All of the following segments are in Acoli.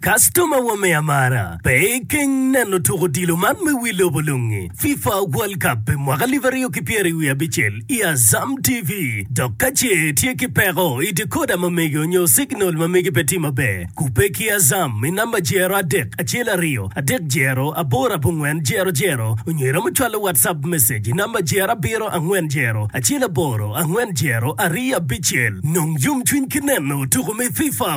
Kastoma wa me amara, pe ikeng neno tuk odilo man me wi lobo lungi, FIFA World Cup pi mwaka alip aryo ki pyeri wiye abicel i Azam TV. Dok ka ce itye ki peko i decoder ma mege nyo signal ma mege pe tye maber, kubbe ki Azam i namba jero adek acel aryo adek jero aboro abongwen jero jero onyo iromo cwalo WhatsApp message i namba jero abiro angwen jero acel aboro angwen jero aryo abicel. Nong yomcwiny ki neno tuko me FIFA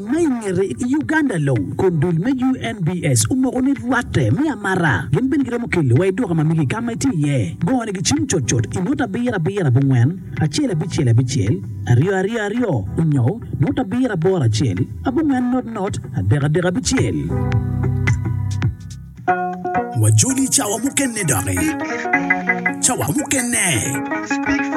Ma i ngete, i Uganda long, kun dul me UNBS omoko ni rwatte me amara gin bene giromo keli wa i duka ma megi ka ma itye iye. Gongo ni gicim cut cut i nota abiro abiro abongwen acel abicel abicel aryo aryo aryo onyo nota abiro aboro acel abongwen not not adek adek abicel. Wajoli cawa mukene doki. Cawa mukene.